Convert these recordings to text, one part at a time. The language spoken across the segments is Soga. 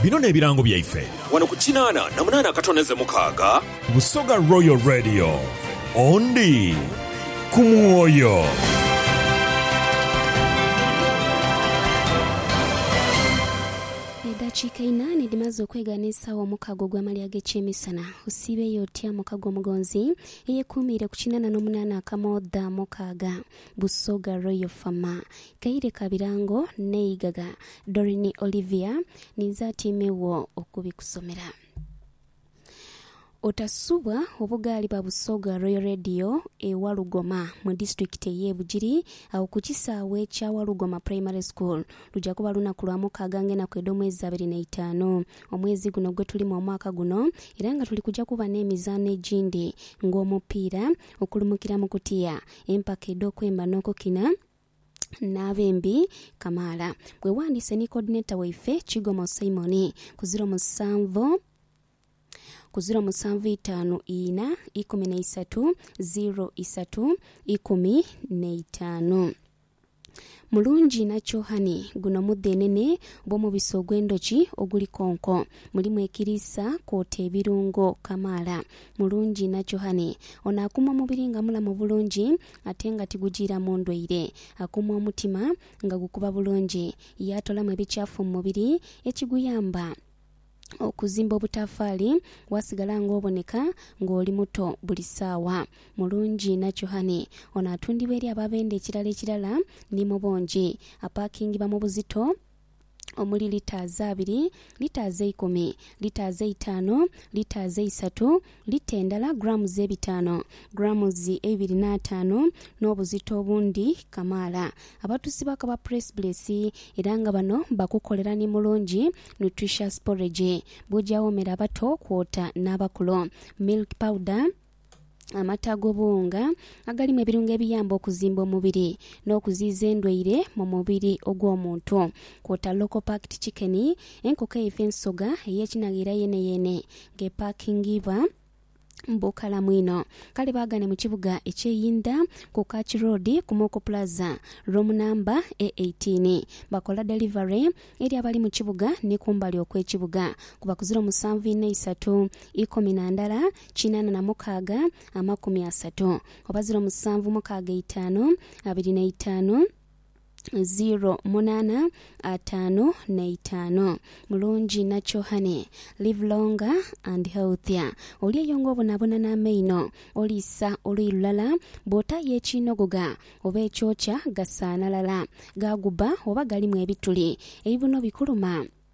Bino n'ebirango byaife. Wano ku kinaana na munaana akatoneze mukaaga. Busoga Royal Radio, Ondi ku mwoyo. Edhakiika einaane dhimaze okwegaana esaawa omukaaga ogw'amalya ag'ekyemisana. Osiibeeyo otya muka gw'omugonzi eyekuumiire ku kinaana n'omunaana akamoodha mukaaga? Busoga Royal Fama, Kaire ka birango n'eighagha. Doreen Olivia, Ninze atyaime wo okubikusomera. Otasubwa obugaali ba Busoga Royal Radio e Walugoma mu disitulikiti ey'e Bugiri agho ku kisaawe kya Walugoma Primary School. Luja kuba lunaku lwa mukaaga ng'enaku edh'omwezi abiri n'eitaanu omwezi guno gwe tulimu omwaka guno era nga tuli kuja kuba n'emizaano egindi ng'omupiira, okulumukira mu kutiya, empaka edh'okwemba n'okukina. n'abe mbi kamaala. Bwewandise ni coordinator waife Kigomo Simon ku ziro musanvu ku ziro musanvu itaanu ina ikumi na isatu ziro isatu ikumi na itaanu. Mulungi inha Kyohani, Guno mudhenene bw'omubisi ogw'endhoki oguli konko. Mulimu ekiriisa kwota ebirungo kamaala. Mulungi nachohani. Ono akuuma omubiri nga mulamu bulungi ate nga tigujiiramu ndwaire. Akuuma omutima nga gukuba bulungi. Yaatolamu ebikyafu mu mubiri ekiguyamba okuzimba obutaafaali waasigala ng'oboneka ng'oli muto buli saawa. Mulungi nachohani. Ono atundibwa eri abo abenda ekirala ekirala ni mu bungi. Apaakingibwa mu buzito. omuli liters abiri, liters eikumi, liters eitaanu, liters eisatu, lita endala grams ebitaanu, grams eibiri n'ataanu, n'obuzito obundi kamaala. Abatusi bakaba press blesi era nga bano bakukolera ni mulungi, nutritious porridge, bw'ojawo mere abato kwota n'abakulu, milk powder, Amata ag'obuwunga agalimu ebirungo ebiyamba okuzimba omubiri n'okuziiza endwaire mu mubiri ogw'omuntu kwota local packed chicken, enkoko eife ensoga ey'ekinaghira yeeneyeene ng'epaakingibwa mu bukalamu inho. Kale baagane mu kibuga eky'e Yinda ku Kach Road ku Moko Plaza, room namba e eighteen. Bakola delivery eri abali mu kibuga ni kumbali okw'ekibuga ku bakuzira omusanvu inho eisatu ikumi na ndala kinana na mukaaga, amakumi asatu oba ziro musanvu mukaaga itaanu abiri na itaanu, ziro munaana ataanu na itaanu. Mulungi nakyo honey. Live longer and healthier. Oli eyo nga obonabona n'amaino, oliisa oluyi lulala, bw'otaayo ekiinogoga oba ekyokya gasaanalala, gaagubba oba galimu ebituli, ebibuno bikuluma.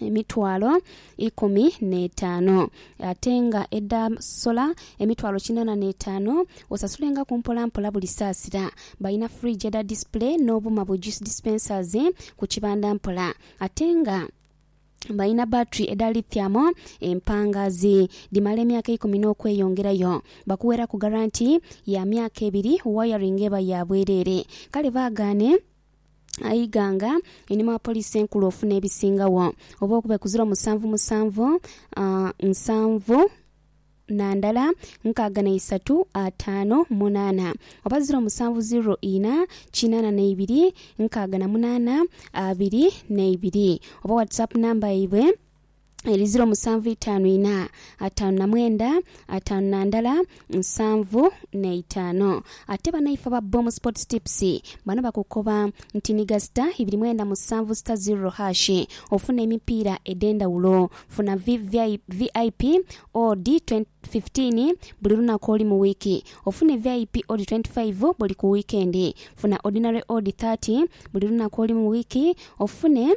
emitwalo ikumi n'etaano, ate nga edha sola emitwalo kinaana n'etaano, osasulengaku mpolampola buli saasira. Balina fridge edha display n'obuuma bu juice dispensers ku kibanda mpola ate nga balina battery edha lithium empangaazi dhimala emyaka ikumi n'okweyongerayo. Bakuweraku garanti ya myaka ebiri, wiring eba ya bwereere. Kale baagaane. Iganga einhuma wa poliisi enkulu ofuna ebisingagho oba okuba ekuzira omusanvu musanvu nsanvu na ndala nkaaga na isatu ataano munaana oba ziro musanvu ziro ina kinaana na ibiri nkaaga na munaana abiri na ibiri oba whatsapp number yaibwe eri ziro musanvu itaanu ina, ataanu na mwenda, ataanu na ndala, nsanvu na itaano. Ate banaife aba Boom Sports Tips bano bakukoba nti ni gasita ibiri mwenda musanvu sita zirro hash ofune emipiira edhendawulo. Funa VIP odd fifteen buli lunaku oli mu wiiki ofune VIP odd twenty five buli ku wiikendi. Funa Ordinary odd thirty buli lunaku oli mu wiiki ofune.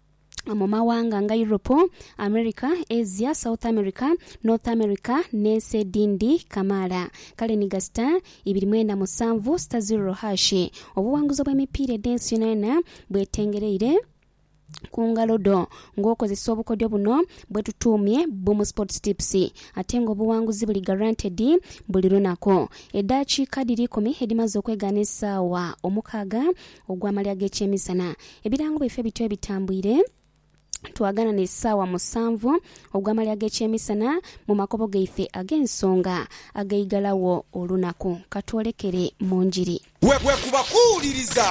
mu mawanga nga Europe, America, Asia, South America, North America n'ensi edhindi kamaala. Kale ni gasita ibiri mwenda musanvu sita ziroro haashi. Obuwanguzi obw'emipiira edh'ensi yonayona bwetengereire ku ngalo dho ng'okozesa obukodyo buno bwetutuumye Boom Sports Tips ate nga obuwanguzi buli guaranteed buli lunaku. Edaakiika dhiri ikumi edhimaze okwegaana esaawa omukaaga Ogw'amalya ag'ekyemisana. Ebirango byaife bityo ebitambwire twaganha n'esaawa musanvu ogw'amalya ag'ekyemisana mu makobo gaife ag'ensonga ag'eigalagho olunaku. Ka twolekere mu Njiri. Bwe kuba kuwuliriza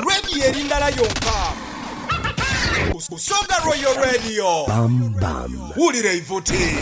Radio eri ndala yonka, Busoga Royal Radio, wulira eivuti.